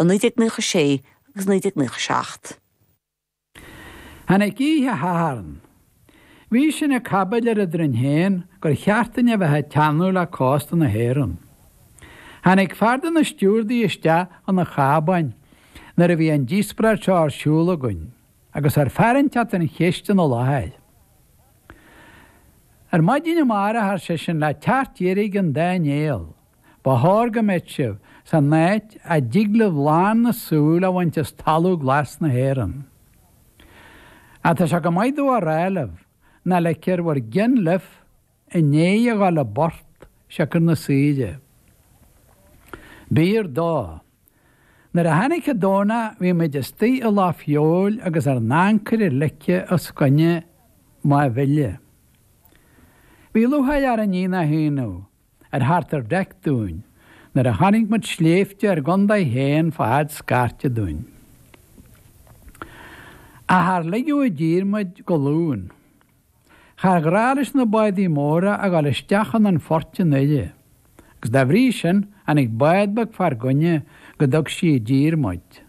i 1996 agus 1997. Tháinig oíche Shathairn. Bhí sinn ag caibidil eadrainn féin gur cheart dúinn a bheith ag teannadh le cósta na hÉireann. Tháinig fear de na stiúrdaí isteach chun an chábáin nuair a bhí an díospoireacht seo ar siúl againn agus ar tharraingt thart an cheist ina láthair. Ar maidin amárach, ar seisean, le teacht dheirge an dá néal, Ba chóir go mbeadh sibh san áit a dtig libh lán na súl a bhaint as talamh glas na hÉireann. Ach tá sé chomh maith domh a rá libh, nach ligfear bhur gcinn libh i ndiaidh a ghabháil i bport siocair na saoire. B'fhíor dó. Nuair a tháinig an Domhnach bhí muid istigh i Loch Feabhail agus ár n-ancaire ligthe os coinne Mhaigh Bhile. Bhí lúcháir orainn, ní nach ionadh, ar theacht ar Deck dúinn nuair a chonaic muid sléibhte ár gcontae féin fá fhad scairte dúinn. Ach char ligeadh i dtír muid go Luan. Char ghnách leis na bádaí móra a ghabháil isteach chun an phoirt an uair úd, agus dá bhrí sin tháinig bád beag fár gcoinne go dtug sí i dtír muid.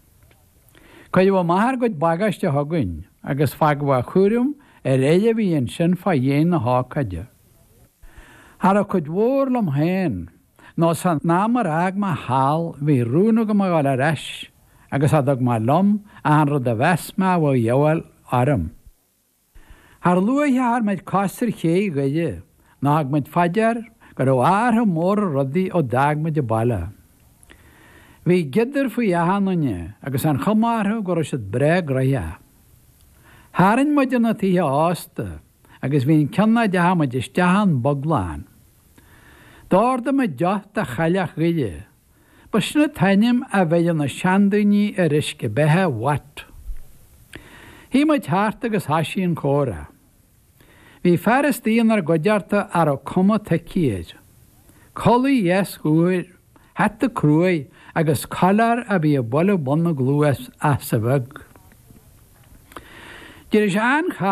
Cuireadh amach ár gcuid bagáiste chugainn, agus fágadh a chúram ar ghiolla a bhí ansin fá dhéin na hócáide. Cha raibh cuid mhór liom féin, nó san am ar fhág mé thall, bhí rún agam a ghabháil ar ais agus cha dtug mé liom ach an rud a mheas mé a bheadh de dhíobháil orm. Char luaithe a chuir muid cos ar ché Dhoire ná thug muid fá dear go raibh athrú mór ar rudaí ó d'fhág muid an baile. Bhí giodar faoi achan duine agus an chuma orthu go raibh siad breá gnoitheach. Tharraing muid chun na dtithe ósta. agus bhí an ceann a dteachaidh muid isteach ann bog lán. D'ordaigh muid deoch de Chailleach Dhoire. Ba shin an t-ainm a bheireadh na seandaoine ar uisce beatha Watt. Shuigh muid thart agus thoisigh an comhrá. Bhí fear istigh inár gcuideachta a raibh cuma toicí air. Culaith dheas úr, hata cruaidh agus collar a bhí ag bualadh bun na gcluas ach sa bheag. D'éirigh sé an-char